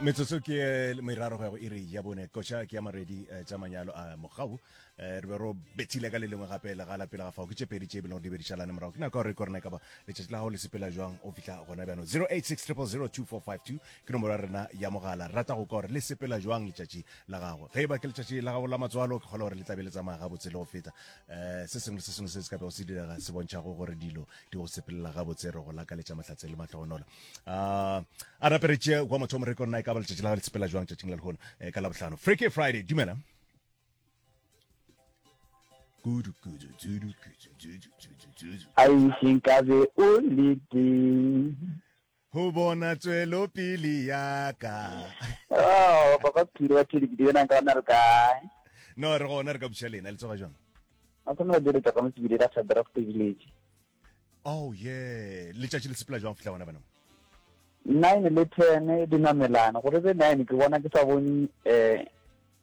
metsotso ke eh, meraro go ya go iri ya bone koša ke ya maredi eh, tša manyalo a mogau eh, re be ro bethile ka le lengwe gape le ga lapela ga fao ke tše pedi tše bilego di be di šalane morago ke nako gore ke rena e ka ba letšatši la gago le sepela jwang o fitlha gona bjano 0860002452 ke nomoro ya rena ya mogala rata go ka gore le sepela jwang letšatši la gago ge e ba ke letšatši la gago la matswalo ke kgole gore le tlabe le tsamaya gabotse le go feta um se sengwe le se sengwe se se ka bego se direga se bontšhago gore dilo di go sepelela gabotse re go lakaletša mahlatse le mahlogonola um a rapere tše kwa motho mo re kona e ka ba letšatši la ga le sepela jwang tšatšing la lehono eh, ka labohlano freaky friday dumela kudu kudu dudu kudu dudu dudu dudu a e seng ka be o le teng Go bona tswelo pili ya ka. Oh, papa Phiri wa Thedi ke di yona nka ona re kae? No, re gona re ka buša lena le tsoga jwang? A tsena ba dira tšaka mo tsibile la Sadrak Village. Oh yeah, letšatši le sepela jwang fihla gona bana? Nine le ten di namelana gore be nine ke bona ke sa bone eh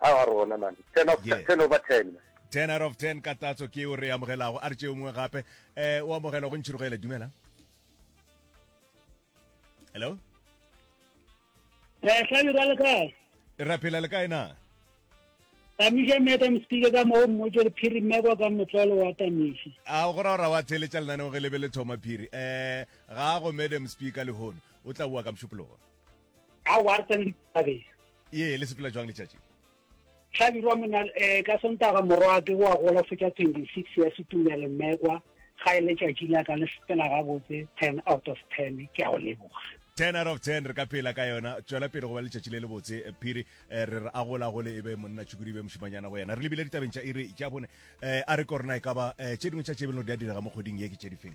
a wa rona man 10 of yeah. 10 over 10 10 out of 10 ka tatso ke o re amogelago a re tšeo mongwe gape um o amogela go ntšhirogele dumela hello eh, hlabira le kae ra phela le kae na tamiša madam speaker ka moo mmotse re phiri mmekwa ka motlolo wa tamiša a go ra wa theletša lenaneo ge lebe le thoma phiri um ga go madam speaker lehono o tla boa ka mošupologo a wa tsena ditabeng ye le sepela jwang letšatši hlabirwa mona um eh, ka sontaga morwa ke wa gola fetša 26 ya setumele mmekwa ga e letšatši la ka le sepela gabotse 10 out of 10 ke a go leboga 10 out of 10 re ka pela ka yona tswela pele go ba letšatši le le botse eh, phiri eh, re re a gola gole e be monna tšhukudi e be mošimanyana go yena re lebile ditabeng tša iri tša bone um a re korena e ka ba um tše dingwe tša tšebelelo di a direga mo kgweding ye ke tše difeng